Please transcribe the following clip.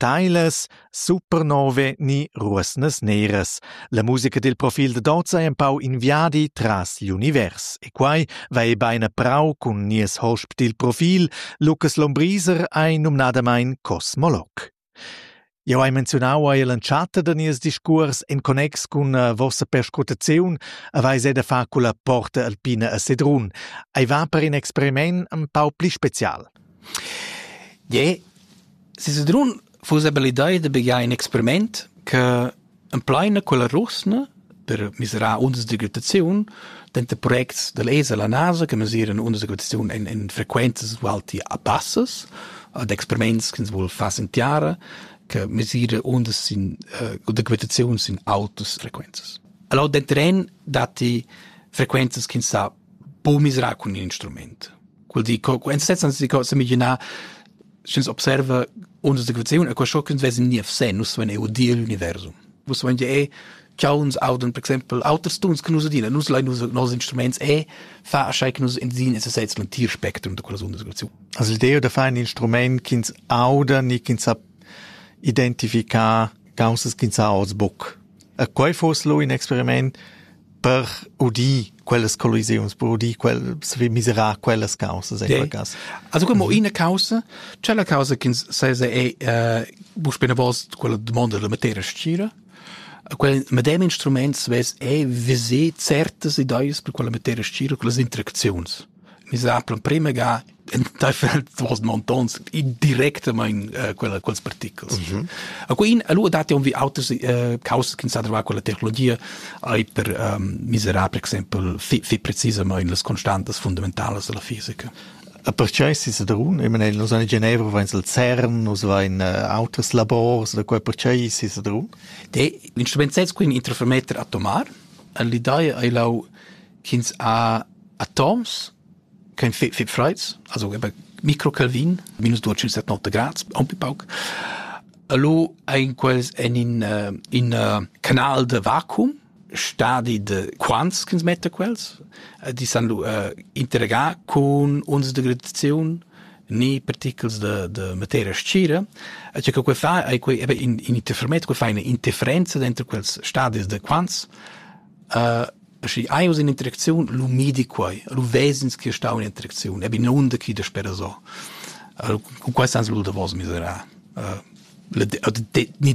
Steilas supernove ni ruosnas neras. La musica dil profil dad oz ei empau in viadi tras l'univers e quei va ei bein a prau cun nies hosp dil profil, Lucas Lombriser, ei numnadamein cosmolog. Jau hai menziunau ei l'entschatta da nies discuors en connex cun uh, vossa perscrutaziun aveis ei da far culla porta alpina a Sedrun. Ei va per in experiment un pau pli special. Je, si Sedrun fuss aber l'idea da begiar in experiment che Empleina quella rusna per mesirar undas d'agitaziun denter projects da lez e la NASA che mesiran undas d'agitaziun en, en frequenzas ualti bassas ad experiments che ins vul far sin tiara che mesira undas sin uh, d'agitaziun sin autas frequenzas. Allora denteren datti frequenzas che ins sa po miserar cun in instrument. Quel di, co, en sezzans di, co semiginar, sch'ins observa ondas de gravitation, e questo che vesi nie vse, nus sven eu dir universum. Vus sven je e chauns auden, per exempel, auters tuns che nus adina, nus lai nus nos instruments e fa asai che nus ensin es sezs un tir spectrum de quellas ondas de gravitation. Also l'idea de fare un instrument che ins auda, ni che ins sa identificar, gausas che ins sa aus buc. E quei fuss lu in experiment per udir quellas collisiuns, per udir quellas, miserar quellas causas en quel cass. Also como ina causa, c'è la causa che sesa è eh, bu spena vos quella domanda della materia scira. Quel medem instrument svess è visé certas ideas per quella materia scira, quelle interaczions. Nus havan l'emprema ga enteifer duos montons directamaing uh, quella, quels particles. Mm -hmm. A quin, allura datti vi auters uh, causas che sa trovare con la tecnologia, ai per um, miserar, per exempel, fi, fi precisament las constantas fundamentalas della fisica. A pertgei si sedrun, ich meine, nus in Genevra vain al CERN, nus vain uh, auters labors, da quei pertgei si sedrun? De, l'instrument sez quin interfermeter atomar, all'idea ai lau ch'ins ha atoms ch'han fetg, fetg freids, also eben Microkelvin, minus duecentsettantauscht grads, aunc pauc. E lu ein quels en in, uh, in uh, canal de vacuum, stadi de quants ch'ins metta quels, eh, die san lu uh, interregar cun uns de gravitaziun ni particles de, de materia scira. E che quei fa, ei quei, eben in, in interferometer, quei fa una interferenza dentro quels stadis de quants Schi hai uss in'interacziun, lu midi quei, lu ves'ins che stau in interacziun, ebi nunder ch'i daspera so. Cun quei sans lu davos miserà. Ni